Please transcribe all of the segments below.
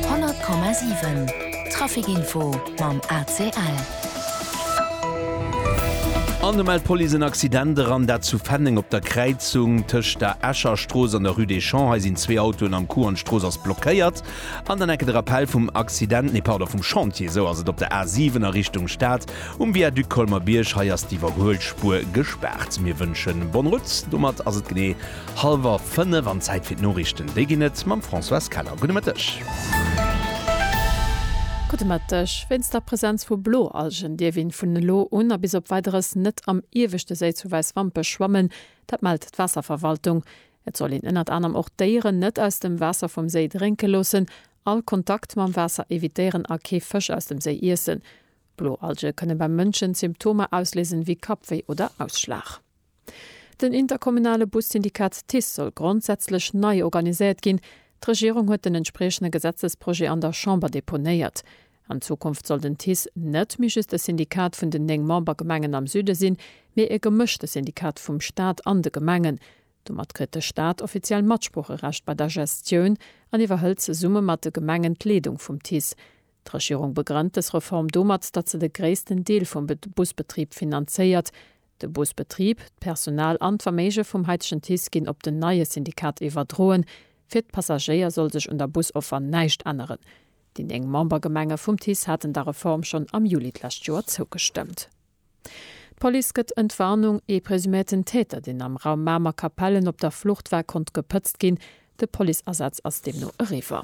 100,7 Trafic Info mam ACL. An de mellt d'Police en Accident eran, dat zu Fenneng op der Kräizung tëscht der Escher Strooss an der Rue des Champs. Hei sinn zwee Autoen am Coup an d'Strooss ass blockéiert. An dann enke de Rappell vum Accident, nee pardon vum Chantier, esou ass et op der A 7 a Richtung Stad um Viaduc Colmer-Bierg. Hei ass d'Iwwerhuelspuer gespaart. Mir wënschen bonne route. Domat ass et genee. Hallwer 5 an Zäit fir d'Noriichten. Déi ginn et mam Françoise Keller. Gudde Mëtteg. Gudde Mëtteg. Wéinst der Presenz vu Bloalgen dierf een vun elo un a bis op Weideres net am ieweschte Séi zu Wäiswampech schwammen. Dat mellt d'Waasserverwaltung. Et soll een ënnert anerem och d'Déieren net aus dem Waasser vum Séi drénke loossen, all Kontakt mam Waasser evitéieren a kee Fësch aus dem Séi iessen. Bloalge kënne beim Mënschen Symptomer ausléisen, wéi Kappwéi oder Ausschlag. Den interkommunale Bus-Syndikat TICE soll grondsätzlech nei organiséiert ginn. D'Regierung huet den entspriechende Gesetzesprojet an der Chamber deponéiert. An Zukunft soll den TICE net méi just e Syndikat vun den néng Membergemengen am Süde sinn, mee e gemëschte Syndikat vum Staat an de Gemengen. Domat kritt de Staat offiziell Matsproocherecht bei der Gestioun an iwwerhëlt zesumme mat de Gemengen d'Leedung vum TICE. D'Regierung begrënnt dës Reform domat, datt se de gréissten Deel vum Busbetrib finanzéiert. De Busbetrib, d'Personal an d'Verméige vum haitegen TICE ginn op den neie Syndikat iwwerdroen. Fir d'Passagéier soll sech un der Busoffer näischt änneren. Déi néng Membergemenge vum TICE haten der Reform schonn am Juli d'lescht Joer zougestëmmt. D'Police gëtt Entwarnung, Ee presuméierten Täter, deen am Raum Mamer Kapellen op der Flucht war, konnt gepëtzt ginn. De Policeasaz ass deemno eriwwer.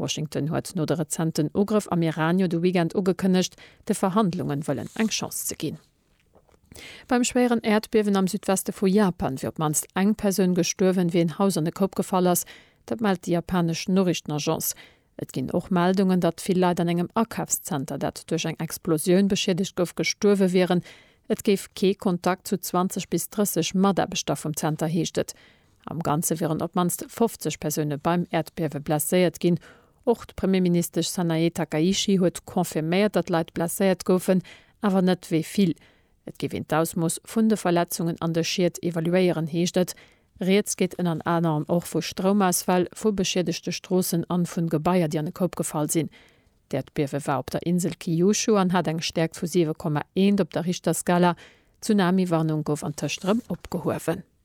Washington huet no de rezenten Ugrëff am Iran jo de Weekend ugekënnegt, de Verhandlungen wëllen eng Chance ze ginn. Beim schwéieren Äerdbiewen am Südweste vu Japan wier op d'mannst eng Persoun gestuerwen, wéi en Haus an e Koup gefall ass. Dat mellt déi japanesch Noriichtenagence. Et ginn och Meldungen, datt vill Leit an engem Akafszenter, dat duerch eng Explosioun beschiedegt gouf, gestuerwe wieren. Et géif kee Kontakt zu 20 bis 30 Mataarbechter vum Zenter, heescht et. Am Ganze wieren op d'mannst 50 Persoune beim Äerdbiewe blesséiert ginn. Och d'Premierministesch Sanae Takaichi huet confirméiert, datt Leit blesséiert goufen, awer net wéi vill. Et géif een d'Ausmooss vun de Verletzungen an de Schied evaluéieren, heescht et. Rieds geet ënnert anerem och vu Stroumausfäll, vu beschiedegte Stroossen an vun Gebaier, déi an e Koup gefall sinn. D'Äerdbiewe war op der Insel Kyushu an hat eng Stäerkt vu 7,1 op der Richterskala. D'Tsunami-Warnung gouf antëscht erëm opgehuewen.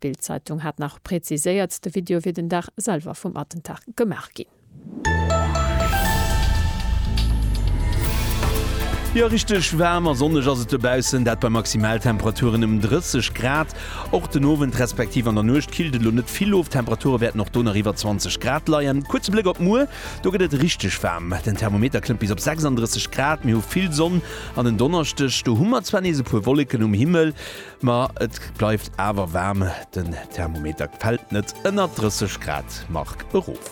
D'Bild-Zeitung hat nach preziséiert, de Video wier den Dag selwer vum Attentat gemaach ginn. Jo, richteg waarm a sonneg ass et dobaussen, dat bei Maximaltemperaturen ëm 30 Grad. Och den Owend respektiv an der Nuecht killt et elo net vill of, d'Temperature wäerten och do nach iwwer 20 Grad leien. Kuerze Bléck op muer, do gëtt et richteg waarm, den Thermometer klëmmt bis op 36 Grad. Mir hu vill Sonn an en Donneschdeg, do hu mer zwar nees e puer Wolleken um Himmel, Ma et bleift awer waarm, den Thermometer fält net ënner 30 Grad Mark erof.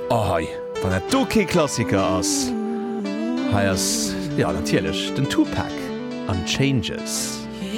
Oh hei, wann dat do kee Klassiker ass! Hei ass jo natierlech den Tupac, Unchainges.